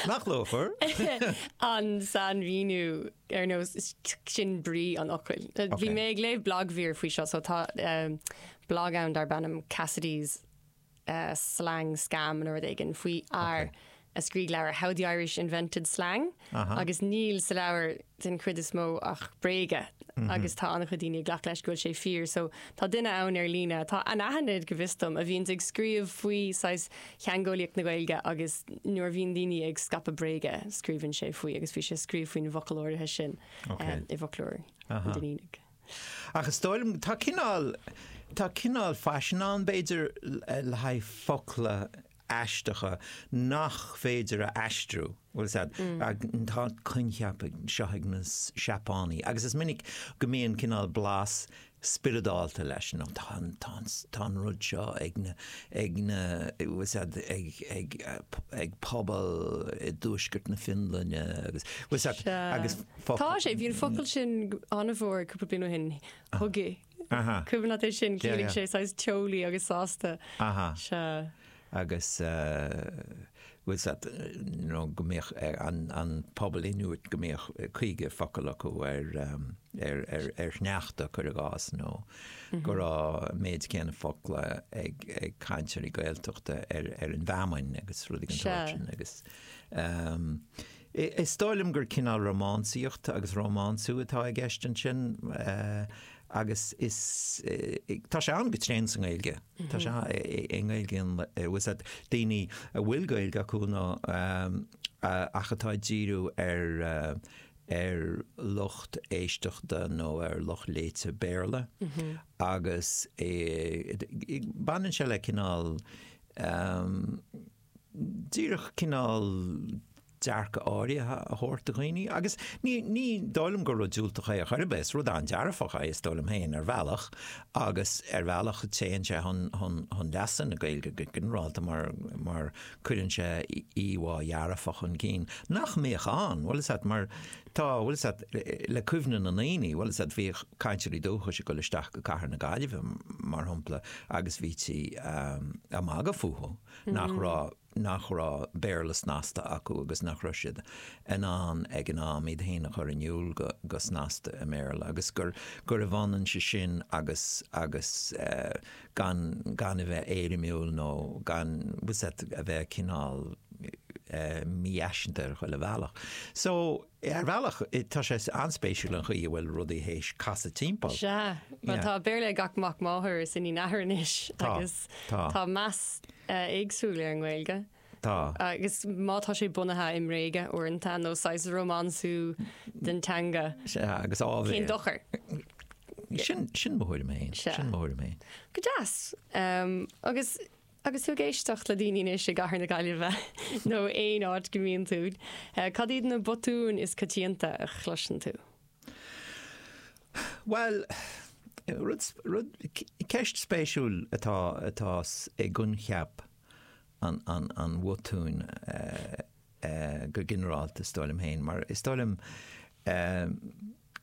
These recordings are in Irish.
Nach luachmhar? An sainmhíniú ar nós sin brí an fhocail. Bhí mé ag léamh blagmhír faoi seo, so tá blag ann darb ainm Cassidy's Slang Scam nó rud éigin faoi fhear a scrígh leabhar How the Irish Invented Slang. agus níl sa leabhar den chuid is mó ach bréaga agus tá an-chuid daoine ag glacadh leis go bhfuil sé fíor. So tá duine ann ar líne atá anaithnid, go bhfios dom, a bhíonn ag scríobh faoi saghas theangeolaíocht na Gaeilge agus nuair a bhíonn daoine ag scaipeadh bréaga, scríobhann sé faoi agus bhí sé ag scríobh faoin bhfocal áirithe sin i bhfoclóir an Duinnínigh. Ach is dóigh liom tá cineál tá cineál faisean ann b'fhéidir le haghaidh focla aisteacha nach féidir a aistriú. Bhfuil a fhios agat, tá an coincheap seo ag na Seapánaigh agus is minic go mbíonn cineál blas spioradálta leis, nó tá an, tá an, tá an rud seo ag na, ag na, bhfuil a fhios agat, ag, ag, ag pobal i dtuaisceart na Fionlainne agus, bhfuil a fhios agat, agus focail. Tá sé, bhí an focal sin an-mhór cúpla bliain ó shin, hygge. Cuimhin leat é sin, chiallaigh sé saghas teolaí agus sásta. Agus bhfuil a fhios agat nó go mbíodh an pobal Inuit go mbíodh caoga focal acu ar shneachta cuir i gcás nó go raibh an méid céanna focla ag cainteoirí Gaeltachta ar an bhfeamainn agus rudaí den sórt sin agus. Is dóigh liom gur cineál rómánsaíocht agus rómánsú atá i gceist ansin agus is, tá sé ann go tréan sa nGaeilge. Tá sé i nGaeilge bhfuil a fhios agat daoine a bhfuil Gaeilge acu ná ach atá ag díriú ar ar lucht éisteachta nó ar lucht léite Béarla agus baineann sé le cineál díreach cineál dearcadh áirithe a thabhairt do dhaoine agus ní, ní dóigh liom gur rud diúltach é ar chor ar bith, is rud an-dearfach é is dóigh liom féin ar bhealach agus ar bhealach téann sé chun, chun, chun leasa na Gaeilge go ginearálta mar, mar cuireann sé íomhá dhearfach chun cinn nach mbíodh ann, bhfuil a fhios agat mar tá, bhfuil a fhios agat le cuimhne na ndaoine, bhfuil a fhios agat bhíodh cainteoirí dúchais ag dul isteach go cathair na Gaillimhe mar shampla agus bhítí ag magadh fúthu. nach raibh, nach raibh Béarla snasta acu agus nach raibh siad in ann ag an am iad féin a chur in iúl go, go snasta i mBéarla agus gur, gurbh ionann sé sin agus, agus eh, gan, gan a bheith éirimiúil nó gan, bhfuil a fhios agat, a bheith cineál eh, mífhaiseanta ar chuile bhealach. So. Ar bhealach, tá sé an-spéisiúil an chaoi a bhfuil rudaí th'éis casadh timpeall. Sea. Bhuel, tá Béarla ag gach mac máthar is iníon athar anois agus tá meas éagsúil ar an nGaeilge. Tá. Agus má tá sé bunaithe i mbréaga uaireanta nó saghas rómánsú den teanga. Sea, agus ábhar. Cén dochar? Sin mar é. Sin mar é. Go deas. Agus Agus tú ag éisteacht le daoine anois i gcathair na Gaillimhe nó aon áit go mbíonn tú, cad iad na botúin is coitianta a chloiseann tú? Bhuel, rud, rud, ceist spéisiúil atá, atá i gcoincheap an, an, an bhotúin go ginearálta, is dóigh liom féin, mar is dóigh liom,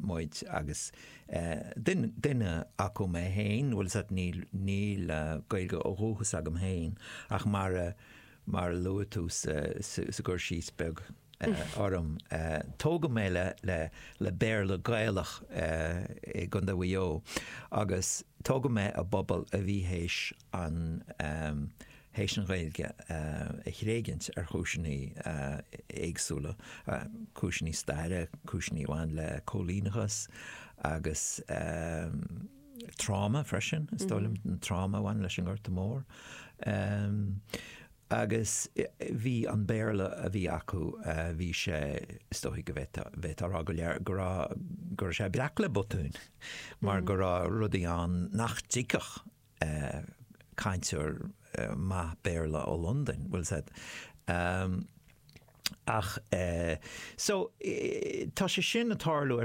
muid agus is duine acu mé fhéin, bhfuil a fhios agat níl, níl Gaeilge ó dhúchas agam fhéin ach mar a, mar a luaigh tú sa, sa gcur síos beag orm, tógadh mé le, le, le Béarla Gaelach i gCondae Mhaigh Eo agus tógadh mé i bpobal a bhí th'éis ann th'éis an Ghaeilge a thréigint ar chúiseanna éagsúla, cúiseanna staire, cúiseanna a bhain le cóilíneachas agus tráma freisin, is dóigh liom, an tráma a bhain leis an nGorta Mór. Agus bhí an Béarla a bhí acu, bhí sé, is dóigh go bhféadfá a rá go léir, go raibh, go raibh sé breac le botúin mar go raibh rudaí ann nach dtuigfeadh. cainteoir maith Béarla ó Londain, bhfuil a fhios agat. Ach, so, tá sé sin ag tarlú ar.